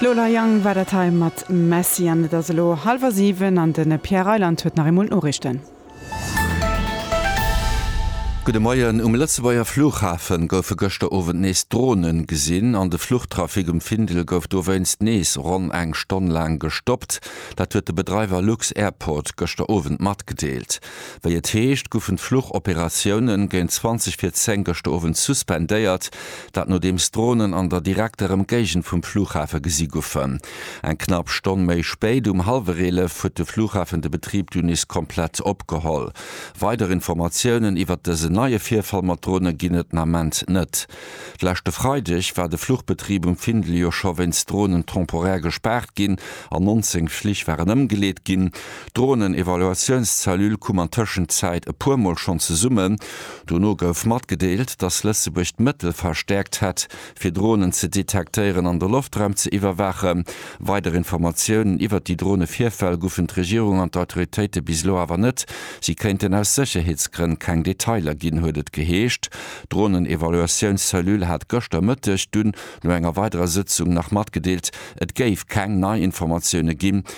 D'Lola Jang war dat hei mat Messi an et ass elo hallwer 7 an de Pierre Reyland huet nach eemol d'Noriichten. Gudde Moien, Um Lëtzebuerger Flughafe goufe gëschter Owend nees Drone gesinn an de Fluchtrafic um Findel gouf dowéinst nees ronn eng Stonn laang gestoppt. Dat huet de Bedreiwer lux-Airport gëschter Owend matgedeelt. Wéi et heescht, goufen d'Fluchoperatiounen géint 20 vir 10 gëschter Owend suspendéiert, Dat nodeems d'Dronen an der direkter Emgéigend vum Flughafe gesi goufen. Eng knapp Stonn méi spéit, um hallwer 11, huet de Flughafen de Betrib du nees komplett opgeholl. Weider Informatiounen iwwert dësen neie Virfall mat Drone ginn et den Ament net. Leschte Freideg war de Fluchbetrib um Findel jo scho wéinst Dronen temporär gespaart ginn an 19 Flich waren ëmgeleet ginn. D'Dronen-Evaluatiouns-Cellule koum an Tëschenzäit e puer Mol schonn zesummen. Dono gouf matgedeelt, datt Lëtzebuerg d'Mëttel verstäerkt hätt, fir Dronen ze detektéieren an de Loftraum ze iwwerwaachen. Weider Informatiounen iwwert déi Drone-Virfäll gufen d'Regierung an d'Autoritéite bis elo awer net. Si kéinten aus Sécherheetsgrënn keng Detailer ginn, huet et geheescht. D'Dronen-Evaluatiouns-Cellule hat gëschter Mëtteg dunn no enger weiderer Sëtzung nach matgedeelt, et géif keng nei Informatioune ginn.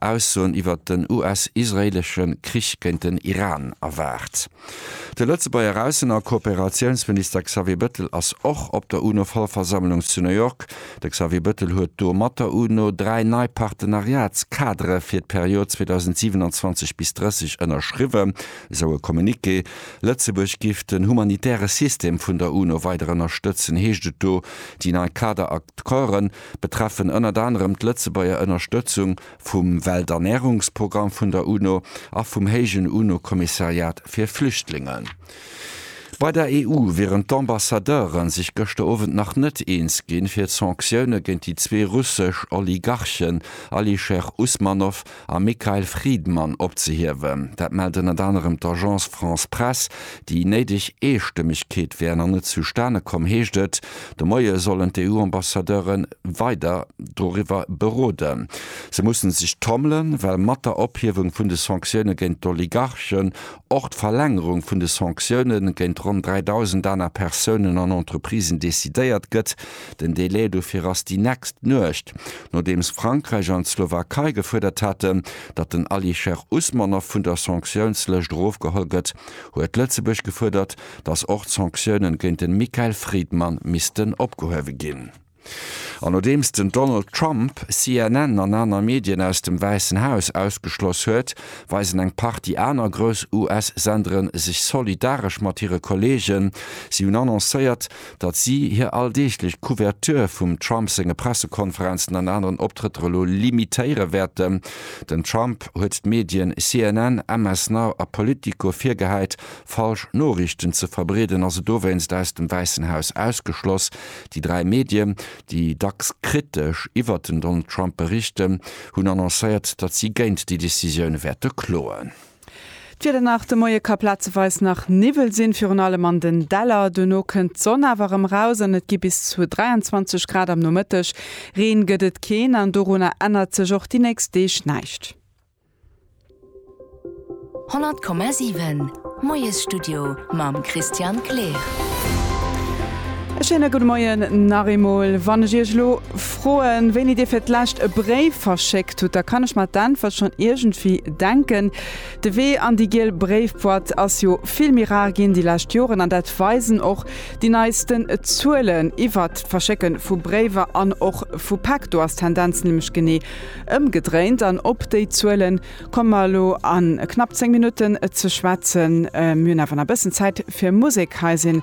Aussoen iwwert den US-israeelesche Krich géint den Iran erwaart. De Lëtzebuerger Aussen a Kooperatiounsminister Xavier Bettel ass och op der UNO-Vollversammlung zu New York. De Xavier Bettel huet do mat der UNO dräi nei Partenariats-Kadere fir d'Period 2027 bis 30 ënnerschriwwen, esou e Communiqué. Lëtzebuerg giff den humanitäre System vun der UNO weider ënnerstëtzen, heescht et do. Déi nei Kader-Accorden betreffen ënnert anerem d'Lëtzebuerger Ënnerstëtzung vum Welternärungsprogramm vun der UNO a vum héijen UNO-Kommissariat fir Flüchtlinge. Bei der EU wieren d'Ambassadeure sech gëschter Owend nach net eens ginn, fir d'Sanktioune géint déi zwee russesch Oligarchen Alisher Usmanov a Mikhail Fridman opzehiewen. Dat mellt ënnert anerem d'Agence France-Presse. Déi néideg Eestëmmegkeet wär nach net zustane komm, heescht et. De Moie sollen d'EU-Ambassadeure weider doriwwer beroden. Se musse sech tommelen, well mat der Ophiewung vun de Sanktioune géint d'Oligarchen och d'Verlängerung vun de Sanktioune géint ronn 3.000 aner Persounen an Entreprisen decidéiert gëtt, Den Delai dofir ass déi nächst Nuecht. Nodeems Frankräich an d'Slowakei gefuerdert haten, datt den Alisher Usmanov vun der Sanktiounslëscht erofgeholl gëtt, huet Lëtzebuerg gefuerdert, datt och d'Sanktiounen géint den Mikael Fridman missten opgehuewe ginn. An nodeems den Donald Trump CNN an aner Medien aus dem Wäissen Haus ausgeschloss huet, weisen eng Partie aner grouss US-Senderen sech solidaresch mat hire Kolleegen. Si hunn annoncéiert, datt si hir alldeeglech Couverture vum Trump senge Pressekonferenzen an aneren Optrëtter elo limitéiere wäerten. Den Trump huet d'Medien CNN, MS Now a Politico virgehäit, falsch Noriichten ze verbreeden a se dowéinst aus dem Wäissen Haus ausgeschloss. Déi dräi Medien, déi dacks kritesch iwwert den Donald Trump berichten, hunn annoncéiert, datt si géint déi Decisioun wäerte kloen. D'Wieder nach, De Moie ka plazeweis nach Niwwel sinn, virun allem an den Däller. Duerno kënnt d'Sonn awer erëm raus an et gi bis zu 23 Grad am Nomëtteg. Reen gëtt et keen an dorunner ännert sech och déi nächst Deeg näischt. 100,7 Moiesstudio mam Christian Kleer. E schéine gudde Moien nach eemol. Wann ech Iech elo. Froen, wéini Dir fir d'lescht e Bréif verschéckt hutt, da kann ech mer d'Äntwert schonn iergendwéi denken. De Wee an déi giel Bréifboîte ass jo vill méi rar ginn déi lescht Joren an dat weisen och déi neisten Zuelen iwwert d'Verschécke vu Bréiwer an och vu Päck. Do ass d'Tendenz nämlech genee ëmgedréint an op déi Zuele komme mer elo a knapp zéng Minutten ze schwätzen. Mir hunn awer nach e bëssen Zäit fir Musek. Hei sinn